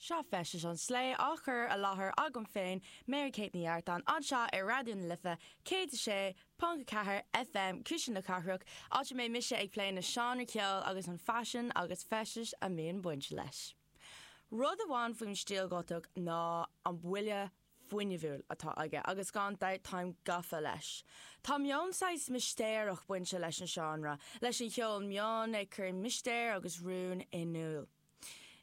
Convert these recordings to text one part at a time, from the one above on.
Seo Feisteas an Slé á chur i láthair agam féin, Mary Kate Ní Artáin, anseo ar Raidió na Life 106.4 FM, Cuisle na Cathrach, áit a mbeidh mise ag plé na seánra ceoil agus an faisean agus feisteas a mbíonn baint leis. Rud amháin faoin stíl Ghotach ná an buille fuinnimhiúil atá aige agus gan dabht táim gafa leis. Tá meon saghas mistéireach bainte leis an seánra, leis an cheol meon ag cur mistéir agus rún in iúl.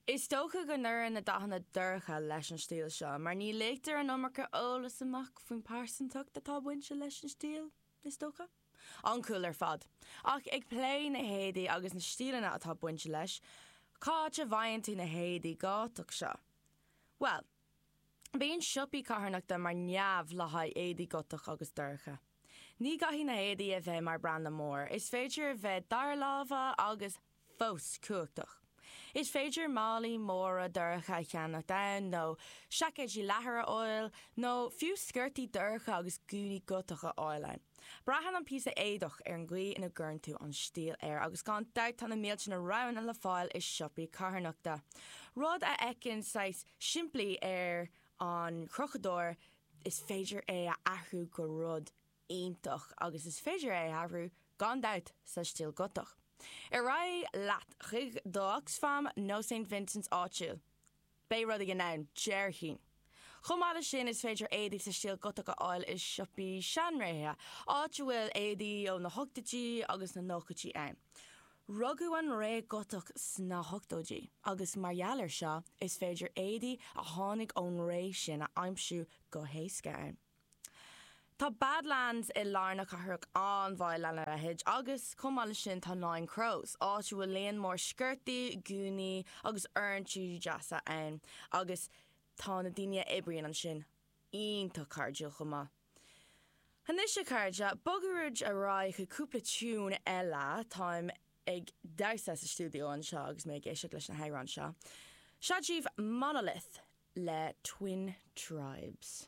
Is dócha go n-oireann na dathanna dorcha leis an stíl seo mar ní ligtear an iomarca eolas amach faoin bpearsantacht atá bainte leis an stíl, is dócha. An-cool ar fad. Ach ag plé na héadaí agus na stíleanna atá bainte leis, cá háit a bhfaigheann tú na héadaí Gotach seo? Bhuel. Bíonn siopaí carthanachta mar neamh le haghaidh éadaí Gotach agus dorcha. Ní gcaithfidh na héadaí a bheith mar branda mór, is féidir a bheith dara láimhe agus fós cumhachtach. Is féidir málaí móra dorcha a cheannacht ann, nó seaicéidí leathair a fháil, nó fiú sciortaí dorcha agus gúnaí Gotach a fháil ann. Braitheann an píosa éadach ar an gcaoi ina gcuireann tú an stíl air agus gan dabht tá na mílte na roghanna le fáil i siopaí carthanachta. Rud a fheiceann saghas simplí ar an chrochadóir is féidir é a athrú go rud iontach agus is féidir é a athrú gan dabht sa stíl Gotach. Ar aghaidh leat chuig do Oxfam nó Saint Vincents áitiúil. Beidh rud éigin ann, déarfainn. Chomh maith leis sin, is féidir éadaí sa stíl Gotach a fháil i siopaí seanréithe, áit a bhfuil éadaí ó na hochtóidí agus na nóchaidí ann. Rugadh an ré Ghotach sna hochtóidí agus mar gheall ar seo, is féidir éadaí a tháinig ón ré sin a aimsiú go héasca ann. Tá Badlands i lár na cathrach an-mhaith lena leithéid agus, chomh maith leis sin, tá Nine Crows, áit a bhfuil líon mór sciortaí, gúnaí agus oiriúintí deasa ann agus tá na daoine a oibríonn ansin iontach cairdiúil chomh maith. Anois, a chairde, bogaimis ar aghaidh chuig cúpla tiúin eile. Táim ag damhsa sa stiúideo anseo agus mé ag éisteacht leis na hamhráin seo. Seo daoibh Monolith le Twin Tribes.